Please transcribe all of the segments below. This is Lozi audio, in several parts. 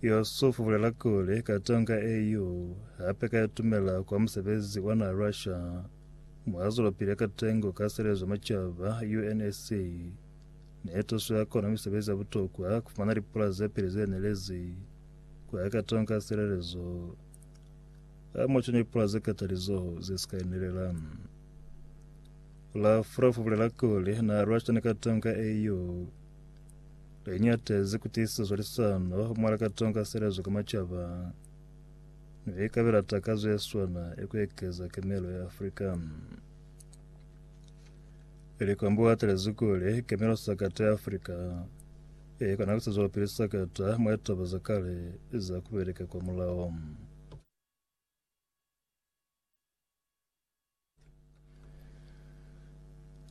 Yusuf bulela kuli, Katonga eu hape ka itumela kwa musebezi wa na Russia mo a zwelapili ka tengo ka Selezo ya Macaba, UNSC, ne tuso ya kona misebezi ya butokwa ku fumana lipula ze peli ze nelezi ku ya Katonga selelezo a mo canya lipula ze katalizoho ze sika inelela. Lavrov bulela kuli na Russia ni Katonga eu Li ñatezi ku tiisa zwalisano mwa likato ka selezo ka macaba, mi li kabela takazo ye swana ya ku ekeza kemelo ya Afrika. Likwambo u atalezi kuli kemelo sakata ya Afrika i kona ku sizwelapili sakata mwa litaba za kale za ku beleka kwa mulao.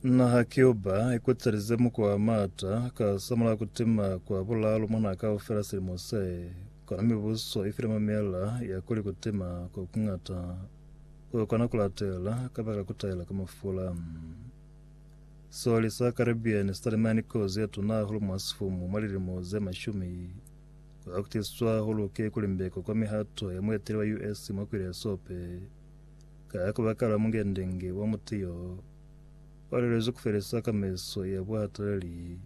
Naha Cuba ikutelize muko wa mata ka samula kutima kwa bulalo mwa naha kaufela silimo se, kona mibuso ifile mamela ya kuli kutima ko kungata kukona kulatela kabakala kutaela ka mafula. Soli sa Caribbean sitalimani kozi yatuna hahulu mwa sifumu mwa lilimo ze mashumi Kwa kutiswa ho luke ku limbeko kwa mihato ya mueteli wa US mwa kwile ya sope, ka kubakala mungendenge wa muti yo wa lelezwi ku felisa kamaiso ya buhatalali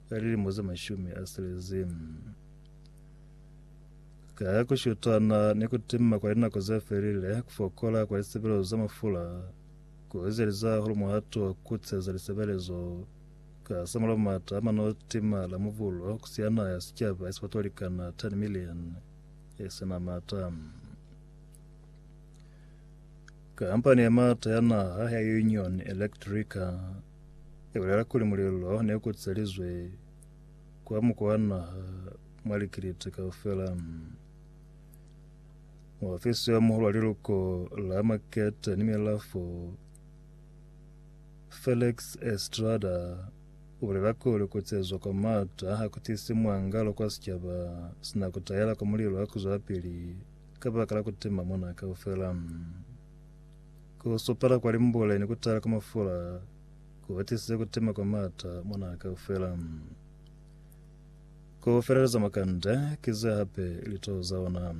ka lilimo ze mashumi a selezi. Ka ku shutana ni ku timma kwa linako ze felile, ku fokola kwa lisebelezo za mafula ku ezeliza hulu muhato wa ku kuteza lisebelezo Ka sa mul'a m'ata a mano tima la mubulo ku siana ya sicaba ye si bato ba likana 10 milioni ye si na m'ata. Kampani ya m'ata ya naha ya Union Electrica i bulela kuli mulilo ne u kutselizwe kwa muko wa naha mwa likiliti kaufela. Muofisi yo muhulu wa liluko la Makete ni Milafo Felix Estrada u bulela kuli ku cezwa kwa m'ata ha ku tisi muangalo kwa sicaba, sina ku tayela kwa mulilo wa ku zwapili kabaka la ku tima mona kaufela. Ku supala kwa limbule ni ku tayela kwa mafula ku atisize ku tima kwa m'ata mona kaufela. Ku feleleza makande ki ze hape litoho za ona.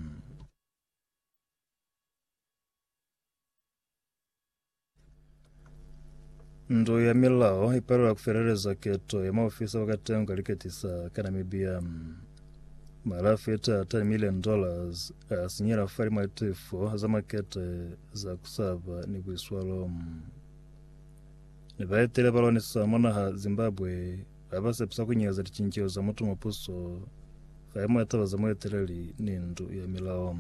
Ndu ya milao ipalelwa kufeleleza keto ya maofisa ba katengo kaliketisa ka Namibia. Mala feta 10 million dollars asinyela fali mwa tifo za makete za kusaba ni buiswalo. Ni baetele ba lwanisa mwa naha Zimbabwe ba ba sepisa kunyeleza licinceho za mutu mwa puso fai mwa taba za mueteleli ni ndu ya milao.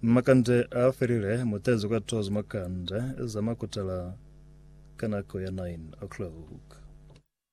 Makande a felile, mutezo ka tozo makande za makutala ka nako ya 9 o'clock.